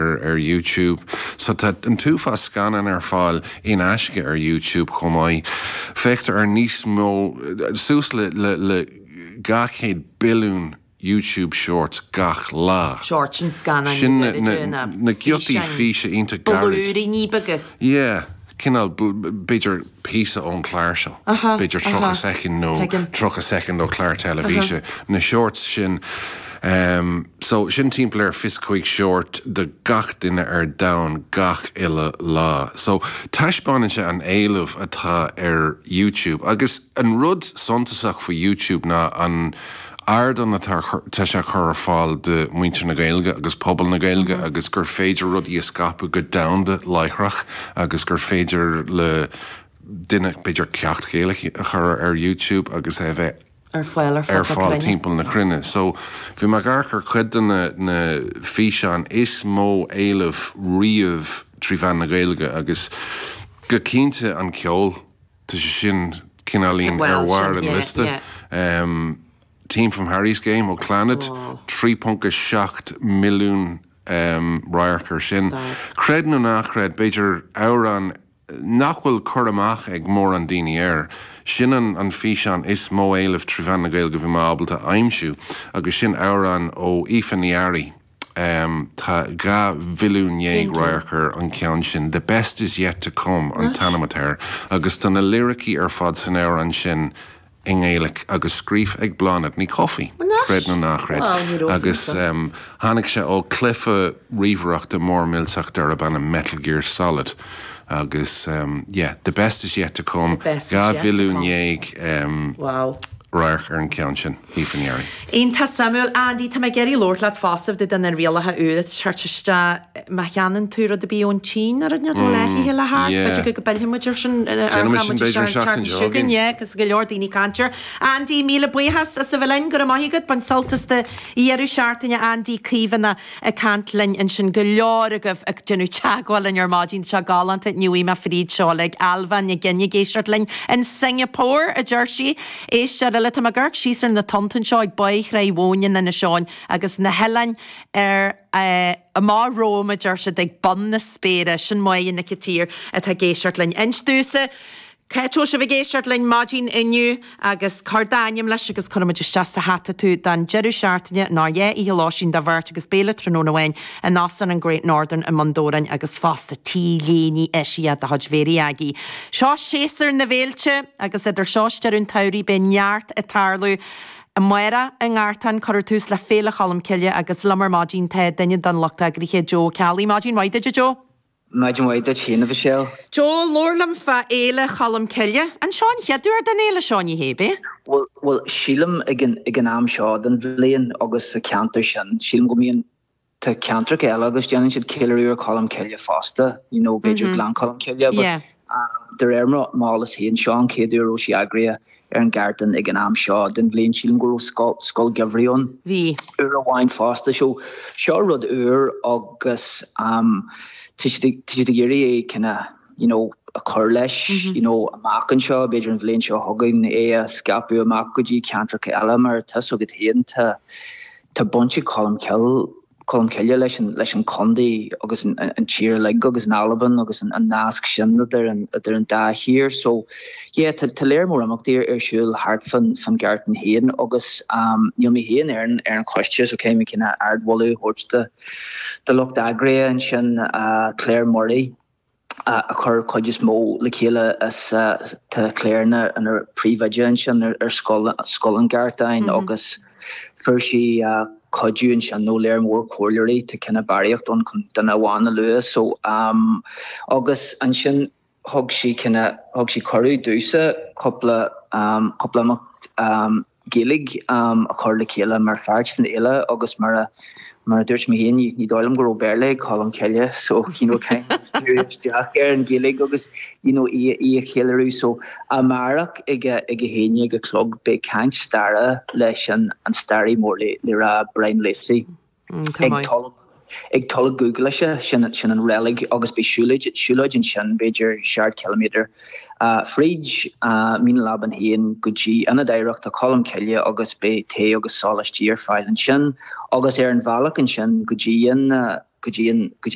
ar YouTube. So tá an t-uafás scannán ar fáil in aisce ar YouTube chomh maith. Féachtar ar níos mó, suas le 200 billiún YouTube Shorts gach lá. Shorts, sin scannáin níos leithne ná físeáin, blúiríní beaga. Yeah, cineál, b'fhéidir. píosa ón gclár seo, b'fhéidir 30 soicind nó 30 soicind ó chlár teilifíse, na shorts sin. So, sin timpeall ar fiche is cúig short do gach duine ar domhan gach uile lá. So, taispeáineann sé an éileamh atá ar YouTube. Agus an rud suntasach faoi YouTube ná an. ardán atá sé chur ar fáil do mhuintir na Gaeilge agus pobal na Gaeilge agus gur féidir rudaí a scaipeadh go domhanda láithreach agus gur féidir le duine b'fhéidir ceacht Ghaeilge a chur ar YouTube agus é a bheith ar fáil timpeall na cruinne. So bhí mé ag amharc ar chuid de na físeáin is mó éileamh riamh trí mheán na Gaeilge agus go cinnte an ceol. Tá sé sin cineáilín ar bharr an liosta. Theme from Harry's Game ó Clannad, 3.7 milliún radharc air sin. Creid nó ná chreid, b'fhéidir amhrán nach bhfuil cur amach ag mórán daoine air, sin an físeán is mó éileamh trí mheán na Gaeilge a bhí mé ábalta a aimsiú agus sin amhrán ó Aoife Ní Fhearraigh, Tá dhá mhilliún dhéag radharc ar an gceann sin, 'The Best Is Yet To Come' an t-ainm atá air, agus tá na liricí ar fad san amhrán sin i nGaeilic agus scríofa ag Bláthnaid Ní Chofaigh, creid nó ná chreid, agus tháinig sé ó chluife ríomhaireachta mór millteach darb ainm Metal Gear Solid. Agus yeah, 'The Best Is Yet To Come', dhá mhilliún dhéag radharc ar an gceann sin. Ní fa ndeireadh. Iontach suimiúil, Andy. Tá mé ag iarraidh labhairt leat fosta fá dtaobh de na rialacha úra atá ag teacht isteach. Má cheannaíonn tú rud ar bith ón tSín, a rud atá leathithe le hart, b'fhéidir go bpillfidh muid ar sin, nuair atá muid isteach ar an tseachtain seo chugainn, yeah, agus go leor daoine ag caint air. Andy, míle buíochas as a bheith linn, go raibh maith agat. Bain sult as do dheireadh seachtaine, Andy Caomhánach. ag caint linn ansin, go leor agaibh ag déanamh teagmháil linn ar maidin, tá sé galánta, inniu me fríd, seolta ag Ailbhe Nic Ghin ag éisteacht linn in Singapore, a deir sí. Éisteoir eile, tá mé ag amharc síos ar na tonnta anseo ag Báigh Thráigh Mhóin in Inis Eoghain agus na hoileáin amach romham, a deir siad, ag bun na spéire. Sin Moya Nic a' tSaoir atá ag éisteacht linn. Introduce. Cá bhfuil sibh ag éisteacht linn maidin inniu agus cuir d'ainm leis agus cuirfimid isteach sa hata tú don deireadh seachtaine, ná dhá oíche lóistín do bheirt agus béile tráthnóna amháin in Óstán an Great Northern i mBun Dobhráin agus fosta t-léine eisiach de chuid Mhéirí Aggie. Seo séasúr na bhféilte agus idir seo agus deireadh an tsamhraidh beidh neart ag tarlú amárach, i nGartán, cuirfear tús le Féile Cholm Cille agus liom ar maidin tá duine den lucht eagraithe, Joe Ó Ceallaigh. Maidin mhaith duit a Joe. Maidin mhaith duit féin, a Mhichelle. Joe, labhair liom fá Fhéile Cholm Cille. An seo an chéad uair don fhéile seo, ní hé, ab ea? Bhuel, sílim, ag an am seo den bhliain agus sa cheantar sin, sílim go mbíonn, tá ceantracha eile agus déanann siad ceiliúradh ar Cholm Cille fosta, you know, b'fhéidir Gleann Cholm Cille, but De réir m'eolas féin, seo an chéad uair a raibh sí eagraithe ar an Ghartán ag an am seo den bhliain. Sílim go raibh scoil gheimhridh ann uair amháin fosta. So seo rud úr agus tá siad ag iarraidh é kinda you know a chur leis you know amach anseo, b'fhéidir an bhliain seo chugainn, é a scaipeadh amach go dtí ceantracha eile mar tá 'fhios agat féin tá baint ag Colm Cille Colm Cille le leis an contae agus an tír uilig agus an Albain agus an nasc sin idir an dá thír. So yeah tá lear mór imeachtaí ar siúl thart fán Ghartán é féin agus níl mé féin ar an choiste so caithfidh mé kinda ardmholadh a thabhairt do lucht eagraithe ansin Claire Murray, a chuir cuid is mó le chéile is tá Claire ina príomhoide ansin ar scoil an Ghartáin agus fuair sí cuidiú ansin ó lear mór comhairleoirí tá kinda barraíocht ann chun duine amháin a lua so agus ansin thug sí kinda thug sí cuireadh domhsa cúpla cúpla imeacht Gaeilg a chur le chéile mar pháirt den fhéile agus mar a mar a dúirt mé féin, ní ní dóigh liom go raibh Béarla ag Colm Cille so you know kind of díriú isteach ar an Ghaeilg agus you know í í a cheiliúradh so amárach ag a ag a haon a chlog beidh caint staire leis an staraí mór le le rá Brian Lacey. Ag Tulach, ag Tulach Dhúghlaise, sin, sin an reilig agus beidh siúlóid, siúlóid ansin b'fhéidir seacht ciliméadar fríd Mín an Lábáin féin go dtí Ionad Oidhreachta Cholm Cille agus beidh tae agus sóláistí ar fáil ansin agus ar an bhealach ansin go dtí an, go dtí an, go dtí.